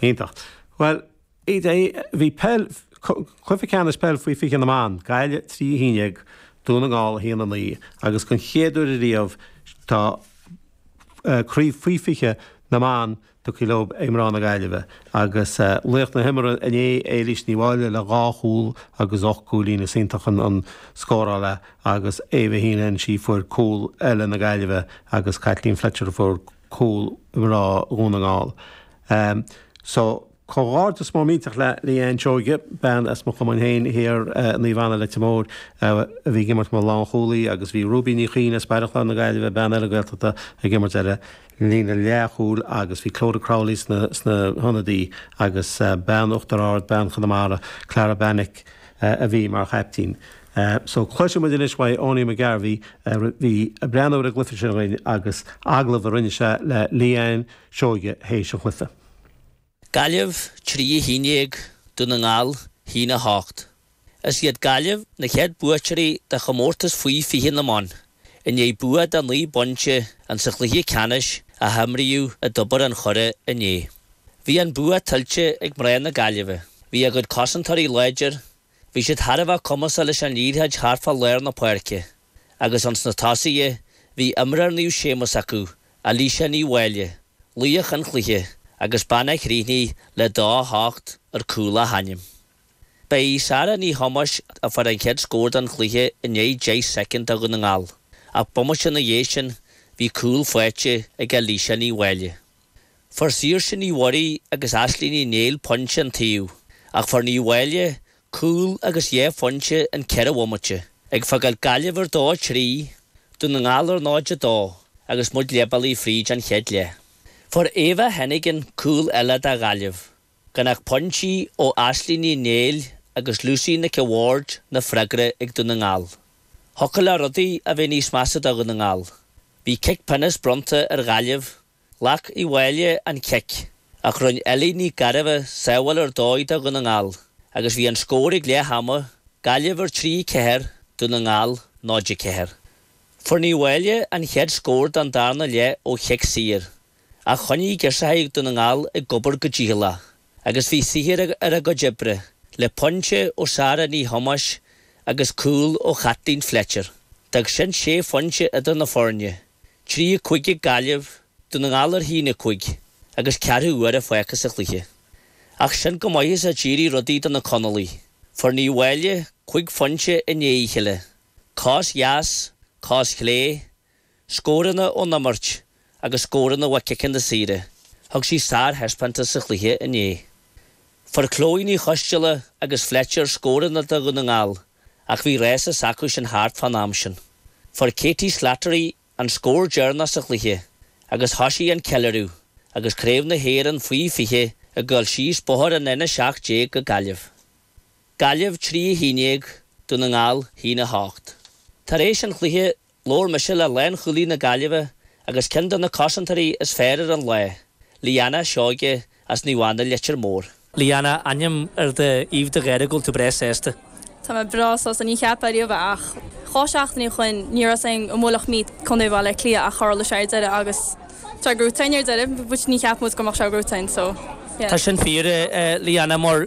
Iontach. Bhuel, bhí peil, cluiche ceannais peil faoi 20 na mban, Gaillimh 3, 11, Dún na nGall 1, 9, agus den chéad uair ariamh tá craobh faoi 20 na mban tugtha leo ag mná na Gaillimhe agus laoch na himeartha inné, Éilís Ní Mháille le dhá chúl agus ocht gcúilín. Is iontach an scóráil é agus Ava Heenan, sí a fuair cúl eile na Gaillimhe agus Caitlín Fletcher a fuair cúl mná Dhún na nGall. So, comhghairdeas mór millteach le Leanne Seoige, bean as mo chumann féin thiar i Naomh Anna, Leitir Móir, a bhí ag imirt mar lánchúlaí agus bhí Ruby Ní Chuinn as Baile Chláir na Gaillimhe, bean eile Gaeltachta, ag imirt ar an líne leathchúil agus bhí Clodagh Crowley sna hionadaithe agus bean Uachtar Ard, bean Chonamara, Clara Banick a bhí mar chaiptín. É so, cloisfidh muid anois uaidh Owenie McGarvey a bhí ag breathnú ar an gcluife sin againn agus agallamh a rinne sé le Leanne Seoige théis an chluife. Gaillimh 3 11 Dún na nGall 1 8. Is iad Gaillimh na chéad buaiteoirí de chomórtas Faoi 20 na mBan i ndiaidh bua de naoi bpointe insa chluiche ceannais a himríodh i dTobar an Choire inné. Bhí an bua tuillte ag mná na Gaillimhe. Bhí a gcuid cosantóirí láidir, Bhí siad thar a bheith cumasach leis an liathróid thart fá lár na páirce agus ins na tosaithe bhí imreoir Naomh Séamus acu, Alisha Ní Mháille, laoch an chluiche agus bean a chríochnaigh le dó a hocht ar cúl a hainm. Ba í Sarah Ní Thomáis a fuair an chéad scór don chluiche i ndiaidh 10 soicind do Dhún na nGall ach bomaite ina dhiaidh sin bhí cúl faighte ag Alisha Ní Mháille. Fuair Saoirse Ní Mhuirí agus Aisling Ní Néill pointe an taobh ach fuair Ní Mháille cúl agus dhá phointe in ceithre bhomaite, ag fágáil Gaillimh ar 2 3, Dún na nGall ar 0 2 agus muid leithbealaigh fríd an chéad leath. Fuair Ava Heneghan cúl eile do Ghaillimh, gan ach pointí ó Aisling Ní Néill agus Lucy Nic a' Bhaird na freagra ag Dún na nGall. Thiocfadh le rudaí a bheith níos measa do Dhún na nGall. Bhí cic pionóis bronnta ar Ghaillimh Ghlac Ní Mháille an cic, ach rinne Ellie Nic Gairbheith sábháil ar dóigh do Dhún na nGall agus bhí an scór ag leath ama, Gaillimh ar 3, 4, Dún na nGall 0, 4. Fuair Ní Mháille an chéad scór don darna leath ó chic saor, ach choinnigh girseachaí Dhún na nGall ag obair go dícheallach agus bhí saothar ar a gcuid oibre, le pointe ó Sarah Ní Thomáis agus cúl ó Chaitlín Fletcher. D'fhág sin sé phointe idir na foirne. Trí a cúig ag Gaillimh, Dún na nGall ar a haon a cúig agus ceathrú uaire fágtha sa chluiche. Ach sin chomh maith is a d'éirigh rudaí do na Conallaigh. Fuair Ní Mháille cúig phointe i ndiaidh a chéile, cos dheas, cos chlé, scóranna ón imirt agus scóranna ó chiceanna saora. Thug sí sárthaispeántas sa chluiche inné. Fuair Chloe Ní Choisdeala agus Fletcher scóranna do Dhún na nGall. ach bhí rás s'acusan thart fán am sin. Fuair Katie Slattery an scór deireanach sa chluiche agus thoisigh an ceiliúradh agus Craobh na hÉireann Faoi 20 ag goil síos bóthar an N17 go Gaillimh. Gaillimh 3 11 Dún na nGall 1 8. Tar éis an chluiche Labhair mise le lánchúlaí na Gaillimhe agus ceann de na cosantóirí is fearr ar an lá, Liana Seoige as Naomh Anna, Leitir Móir. Liana, aithním ar d'aoibh de gháire go bhfuil tú breá sásta. Tá mé breá sásta, ní cheapainn riamh é ach cúpla seachtainí ó shoin ní raibh a fhios againn an mbuailfeadh muid Contae Bhaile Átha Cliath ach tharla sé ar deireadh agus tá gnóite againn ar deireadh, níor cheap muid go mbeadh sé gnóite againn so yeah. Tá sin fíor, a Liana, mar.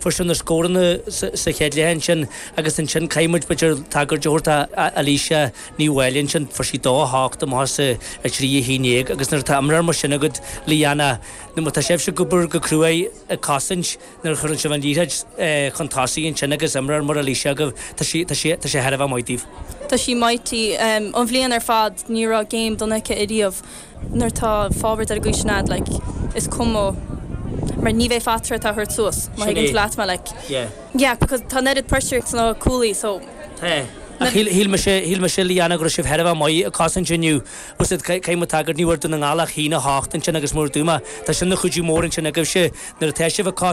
Fuair sibh na scóranna sa chéad leath ansin agus ansin caithfidh muid b'fhéidir tagairt a thabhairt d'Alicia Ní Mháille ansin, fuair sí dó a hocht, amach as a trí a haon déag agus nuair atá imreoir mar sin agat, Leanne, nuair má tá sibhse ag obair go cruaidh ag cosaint, nuair a chuireann sibh an liathróid chun tosaigh ansin agus imreoir mar Alicia agaibh, tá sé, tá sé, tá sé thar a bheith maith daoibh. Tá sí mighty. An bhliain ar fad ní raibh game dona aici ariamh. nuair atá forward ar an gcaoi sin agat like is cuma mar ní bheidh fatra atá a thabhairt suas má Sin é. thuigeann tú leat mé like Yeah. yeah because tá an oiread pressure ag na cúlaithe so Tá. Ach shíl shíl mise shíl mise Leanna go raibh sibh thar a bheith maith ag cosaint inniu usaid ca- caithfidh muid tagairt ní bhfuair Dún na nGall ach haon a hocht ansin agus mar a dúirt mé tá sin ina chuidiú mór ansin agaibhse nuair atá sibh ag cosaint